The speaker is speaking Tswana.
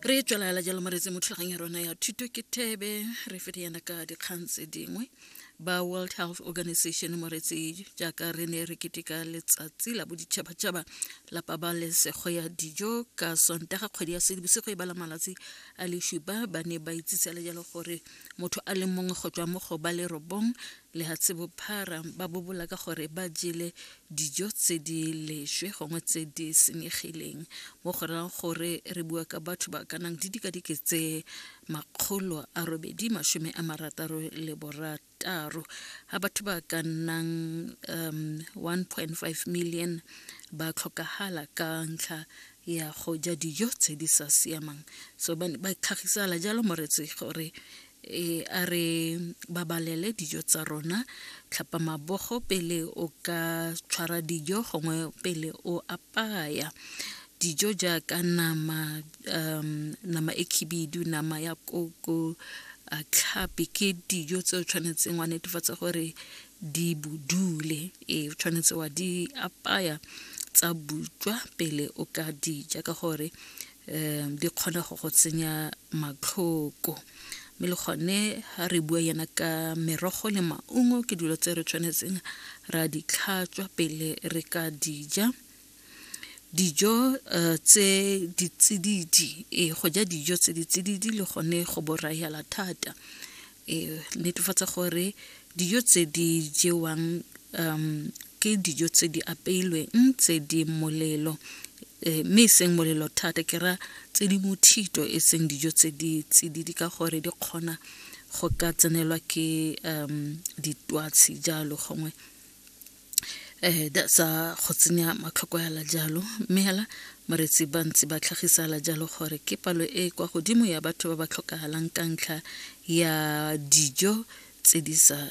re tswelela jalo moretse mo thulagang ya rona ya thuto ke thebe re fete yana ka dikgang tse dingwe ba world health organization moretse jaaka re ne re keteka letsatsi la boditšhabatšhaba la pabalesego ya dijo ka sontaga kgwedi ya sedibosego e bala malatsi a lešupa ba ne ba itsisele jalo gore motho a le mongwe go tswa mo go ba le robong lehatshe bophara ba bobola ka gore ba jele dijo tse di leswe gongwe tse di senyegileng mo go rayang gore re bua ka batho ba ka nang di dikadike tse makgolo a robedi masome a marataro le borataro ga batho ba ka nnang um 1.5 million ba tlhokagala ka ntlha ya go ja dijo tse di sa siamang so ba tlhagisala jalo moretse gore Ee, a re babalele dijo tsa rona tlhapa mabogo pele o ka tshwara dijo gongwe pele o apaya dijo jaaka nama um nama e khibidu nama ya koko tlhapi ke dijo tse o tshwanetseng wa netefatsa gore di bodule e tshwanetse wa di apaya tsa butswa pele o ka dija ka gore um di kgona go go tsenya matlhoko mme le gone ga re bua yana ka merogo le maungo ke dilo tse re tshwanetseng ra di tlhatswa pele re ka dija dijo um tse ditsididi ee go ja dijo tse ditsididi le gone go borayala thata e netefatsa gore dijo tse di jewang um ke dijo tse di apeilweng tse di molelo Eh, mme e seng molelo thata ke ra tse di mothito e seng dijo tse di tsididi ka gore di kgona go ka tsenelwa ke um ditwatshi jalo gongwe um that's a go tsenya matlhoko yala jalo mme hela moretsi ba ntse ba tlhagisala jalo gore ke palo e kwa godimo ya batho ba ba tlhokagalang ka ntlha ya dijo tse di sa